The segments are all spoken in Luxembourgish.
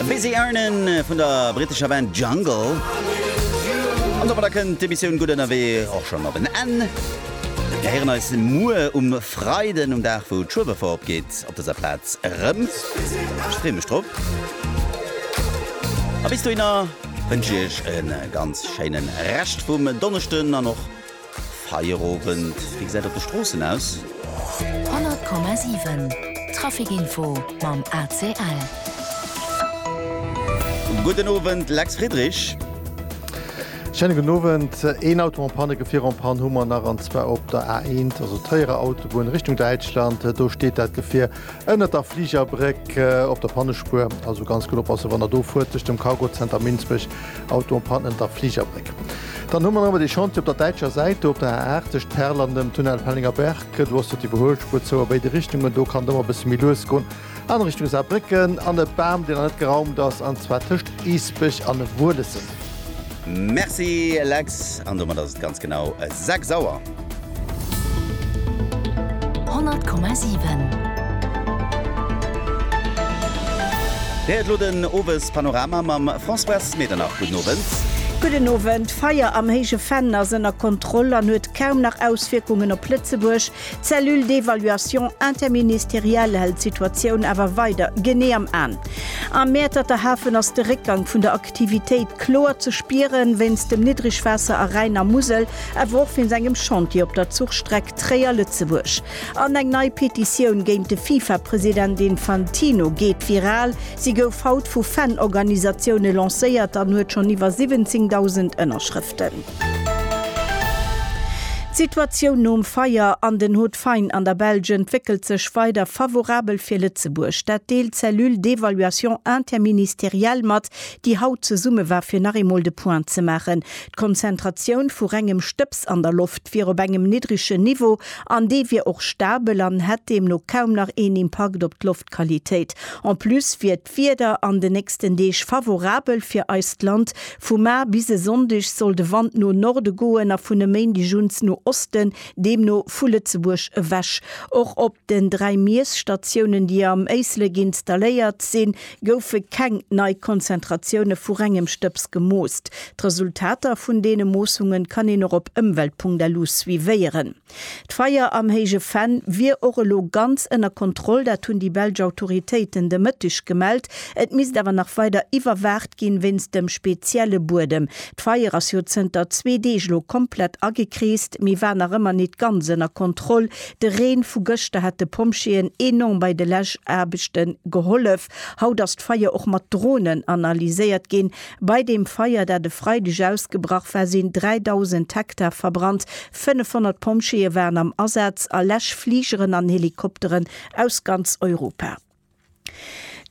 Busy Earnin' vun der brittescher Band Jungle. An domadder kënnt d'Emissioun Gutt Ënnerwee och schonn op en Enn. Mir héieren eis muer um Freiden, um Dag wou d'Schueberfouer opgeet, op dëser Plaz erëm. Ech freeë mech drop. A bis dohinner wënsche ech e ganz schéine Rescht vum Donneschden an och. Feierowend, wéi gesäit et op de Stroossen aus? 100,7 Traficinfo mam ACL. Gudden Owend, Lex Friedrich. Schéine gudden Owend. Een Auto en panne, Gefierer en panne hu mer nach, an zwar op der A1, also Tréierer Autobunn Richtung Däitschland. Do steet dat Gefier Ënnert der Fligerbréck op der Pannespuer, also ganz gutt oppassen, wann Der do fuert, tëscht dem Cargo Center Minsbech, Auto an Panne ënnert der Fligerbréck. Dann hu mer awer dee Chantier op der däitscher Säit, do op der A 8 tëscht Perl an dem Tunnel Pellenger Berg. Do ass jo d'Iwwerhuelspuer zou a béide Richtungen, do kann et ëmmer e bësse méi lues goen an Richtung Saarbrécken. An e Bam, deen nach net geraumt ass, an zwar tëscht Eesbech an Wuelessen. Merci Lex, an domat ass et ganz genau 6 Auer. 100,7. Dir héiert elo den Owespanorama mam Françoise Medernach. Gudden Owend. Gudden Owend. D'Feier am Héije Venn ass ënner Kontroll an huet kaum nach Auswierkungen op Lëtzebuerg. D'Cellule d'évaluation interministérielle hält d'Situatioun awer weider genee am An. Am Mäerterter Hafen ass de Réckgang vun der. Aktivitéit kloer ze spieren, wéinst dem Niddrigwaasser a Rhäin a Musel, awer och wéinst engem Chantier op der Zuchstreck Tréier-Lëtzebuerg. An eng nei Petitioun géint de Fifa-President Infantino geet viral. Si gouf haut vu Fan-Organisatioune lancéiert an huet schonn iwwer 17.000 Ënnerschrëften. D'Situatioun nom Feier an den Hauts-de-Faine an der Belsch entwéckelt sech weider favorabel fir Lëtzebuerg. Dat deelt d'Cellule d'évaluation interministérielle mat, déi haut zesumme war fir nach eemol de Point ze maachen. D'Konzentratioun vu rengem Stëbs an der Loft wier op engem niddregen Niveau an dee wier och stabel an hätt deemno kaum nach een Impakt op d'Loftqualitéit. En plus wier D'Wieder an de nächsten Deeg favorabel fir eist Land. Vu mar bis e Sonndeg soll de Wand no Norde goen a vun e Méindeg uns no Osten, deemno vu Lëtzebuerg ewech. Och op den dräi Miesstatiounen, déi am Éislek installéiert sinn, goufe keng nei Konzentratioune vu rengem Stëbs gemoost. D'Resultater vun deene Moossungen kann een och op ëmwelt.lu suivéieren. D'Feier am Héije Venn wier och elo ganz ënner Kontroll, dat hunn déi belsch Autoritéiten de Mëtteg gemellt. Et misst awer nach weider iwwerwaacht ginn, wéinst dem spezielle Buedem. D'Feier ass jo zënter zwee Deeg elo komplett agekreest, mee war nach ëmmer nit ganz ënner Kontroll. De Reen vu gëschter hat de Pompjeeën enorm bei de Läschaarbechte gehollef. Haut ass d'Feier och mat Dronen analyséiert ginn. Bei deem Feier, dat e Freideg ausgebrach war, sinn 3.000 Hektar verbrannt. 500 Pompjeeë waren am Asaz a Läschfligeren an Helikopteren aus ganz Europa.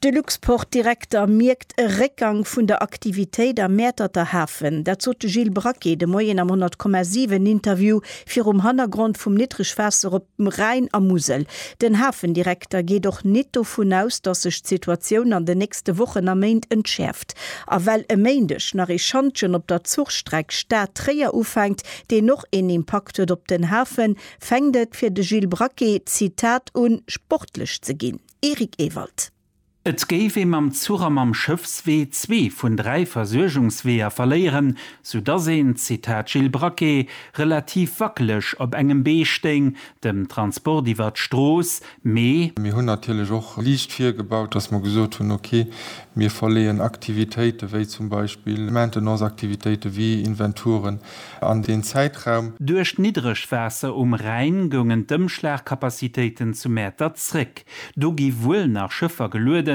De Luxport-Direkter mierkt e Réckgang vun der Aktivitéit am Mäerterter Hafen. Dat sot de Gilles Braquet de Moien am 100,7 Interview virum Hannergrond vum Niddregwaasser op. Rhäin a Musel. Den Hafendirekter geet och nit dovun aus, datt sech d'Situatioun an den nächste Wochen a Méint entschäerft. A well e Méindeg nach ee Schantjen op der Zuchstreck Stad, Tréier ufänkt, deen och een Impakt huet op den Hafen, fänkt et fir de Gilles Braquet, Zitat, un sportlech ze ginn. Eric Ewald. Et géif ee mam Zuch a mam Schëffswee zwee vun dräi Versuergungsweeër verléieren, soudass een, Zitat Gilles Braquet, relativ wackeleg op engem Bee stéing, dem Transport iwwer d'Strooss, mee. Mir hunn natierlech och liicht virgebaut, dass mer gesot hunn, okay, mir verleeën Aktivitéite wéi zum Beispill Maintenance-Aktivitéite wéi Inventuren, an deen Zäitraum. Duerch d'Niddregwaasser um Rhäin goungen d'Ëmschlagcapacitéiten zu Mäertert zréck. Do gi wuel nach Schëffer geluede